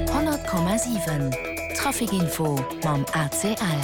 100,7 Traficinfo mam ACL.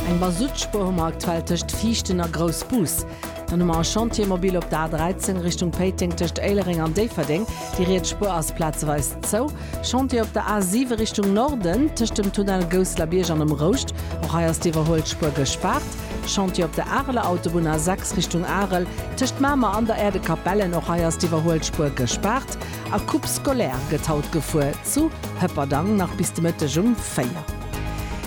Eng Mazoutspur hu mer aktuell tëscht Viichten a Groussbus. Dann hu mer e Chantier mobil op der A13 Richtung Péiteng tëscht Éilereng an Déifferdeng. Déi riets Spur ass plazeweis zou. Chantier op der A7 Richtung Norden tëscht dem Tunnel Gousselerbierg an dem Rouscht. Och hei ass déi iwwerhuelt Spur gespaart. Chantier op der Areler Autobunn A6 Richtung Arel, tëscht Mamer an der Aire de Capellen, och hei ass d'Iwwerhuelspuer gespaart a Coupe scolaire gëtt haut gefuer zu Hëpperdang nach bis de Mëtteg um 4.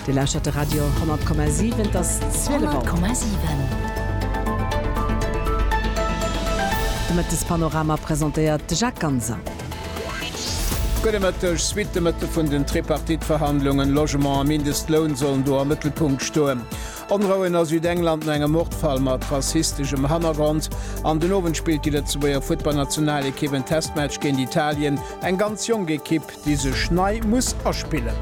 Dir lauschtert de Radio 10,7, et ass 12 Auer. 10,7. De Mëttespanorama presentéiert de Jacques Ganser. Gudde Mëtteg, Suite de Mëtteg vun den Tripartite-Verhandlungen, Logement a Mindestloun sollen do am Mëttelpunkt stoen. Onrouen a Südengland no engem Mordfall mat rassisteschem Hannergrond an den Owend spillt déi Lëtzebuerger Futtballnationalekipp en Testmatch géint Italien, eng ganz jonk Ekipp, déi sech nei muss aspillen.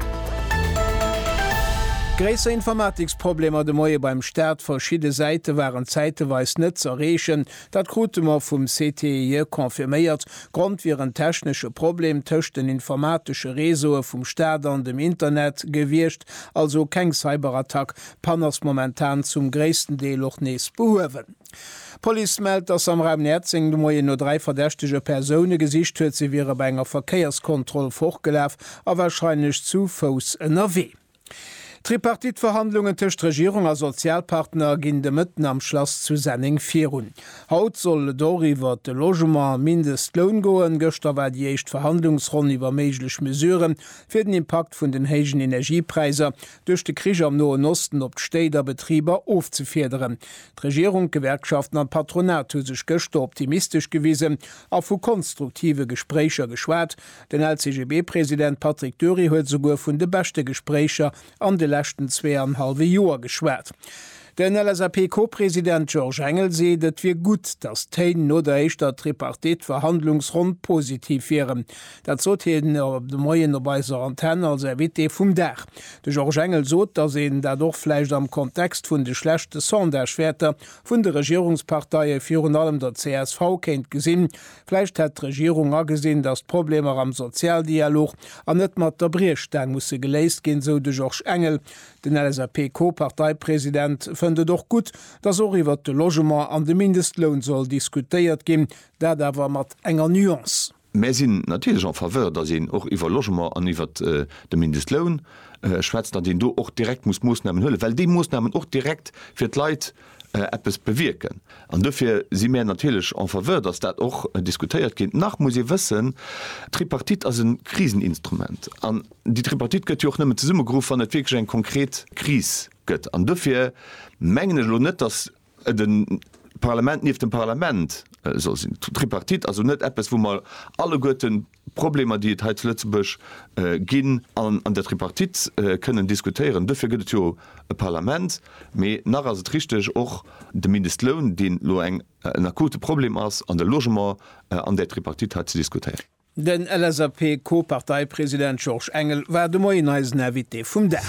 Gréisser Informatiksproblemer de Moie beim Staat, verschidde Säite waren zäiteweis net z'erreechen. Dat krute mer vum CTIE confirméiert. Grond wier en technesche Problem tëscht den informatesche Réseaue vum Staat an dem Internet gewiescht, also keng Cyberattack. D'Pann ass momentan zum gréissten Deel och nees behuewen. D'Police mellt, dass am Raum Näerzeng de Moien no dräi verdächtege Persoune gesicht huet. Si wiere bei enger Verkéierskontroll fortgelaf a warscheinlech zu Fouss ënnerwee. D'Tripartite-Verhandlungen tëscht Regierung a Sozialpartner ginn de Mëtten am Schlass zu Senneng virun. Haut soll et och iwwert de Logement a Mindestloun goen. Gëschter war déi éischt Verhandlungsronn iwwer méiglech Mesurë fir den Impakt vun den héijen Energiepräisser duerch de Krich am Noen Osten op d'Stéit a Betriber ofzefiederen. D'Regierung, d'Gewerkschaften an d'Patronat hu sech gëschter optimistesch gewisen a vu konstruktive Gespréicher geschwat, Den LCGB-President Patrick Dury huet esouguer vun de beschte Gespréicher an de leschten zwee an hallwe Joer geschwat. Den LSAP-Co-President Georges Engel seet, et wier gutt, datt d'Téin no der éischter Tripartite-Verhandlungsronn positiv wieren. Dat sot hien de Moien op eiser Antenn als Invité vum Dag. De Georges Engel sot, datt een dat och vläicht am Kontext vun de schlechte Sondagewäerter vun de Regierungsparteie, virun allem der csv, kéint gesinn. Vläicht hätt d'Regierung agesinn, datt d'Problemer am Sozialdialog an net mat der Briechstaang musse geléist ginn, sou de Georges Engel. Den LSAP-Co-Parteipresident fënnt et och gutt, datt och iwwert de Logement an de Mindestloun soll diskutéiert ginn, dat awer mat enger Nuance. Mär sinn natierlech en faveur, datt een och iwwer Logement an iwwert de Mindestloun schwätzt, datt een do och direkt muss Moossnamen huelen, well déi Moossnamen och direkt fir d'Leit eppes bewierken. An dofir si mär natierlech en faveur, dass dat och diskutéiert gétt. Nach muss ee wëssen, d'Tripartite ass e Kriseninstrument. An déi Tripartite gëtt jo och nëmmen zesummegeruff, wann et wierklech eng konkret Kris gëtt. An dofir mengen ech elo net, dass et e Parlament nieft dem Parlament soll sinn. D'Tripartite ass elo net eppes, wou mer alleguerten, Problemer, déi et hei zu Lëtzebuerg ginn an an der Tripartite kënnen diskutéieren. Dofir gëtt et jo e Parlament. Mee nach ass et richteg, och de Mindestloun, deen elo eng, en akute Problem ass, an de Logement an där Tripartite hei ze diskutéieren. Den LSAP-Co-Parteipresident Georges Engel war de Moien eisen Invité vum Dag.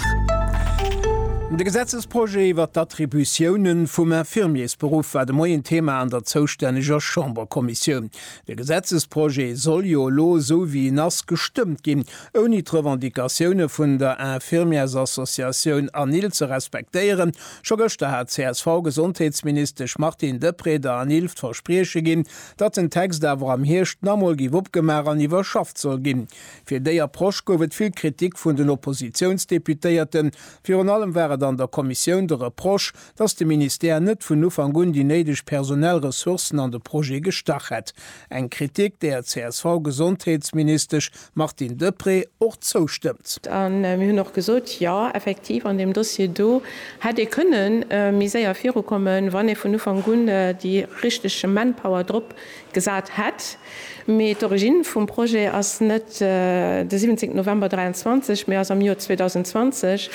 De Gesetzesprojet iwwert d'Attributiounen vum Infirmiersberuff war de Moien Thema an der zoustänneger Chamberkommissioun. De Gesetzesprojet soll jo elo esou wéi en ass gestëmmt ginn, ouni d'Revendicatioune vun der Infirmièresassociatioun ANIL ze respektéieren. Scho gëschter hat d'CSV-Gesondheetsministesch Martine Deprez der ANIL d'Versprieche ginn, datt den Text awer am Hierscht nach emol géif opgemaach an iwwerschafft soll ginn. Fir déi Approche gouf et vill Kritik vun den Oppositiounsdeputéierten. Virun allem war et an der Kommissioun de Reproche, dass de Ministère net vun Ufank un déi néideg personell Ressourcen an de Projet gestach hätt, eng Kritik, där d'CSV-Gesondheetsministesch Martine Deprez och zoustëmmt. A mir hunn och gesot, Jo, effektiv, an deem Dossier do hätt ee kënne méi séier virukommen, wann ee vun Ufank un déi richteg Manpower drop Gesat hätt. Mee d'Origine vum Projet ass net de 17 November 23, mee ass am Joer 2020,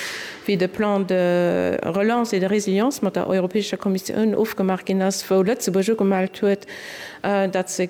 wéi de Plan de relance et de résilience mat der Europäescher Kommissioun ofgemaach ginn ass, wou Lëtzebuerg ugemellt huet, datt se.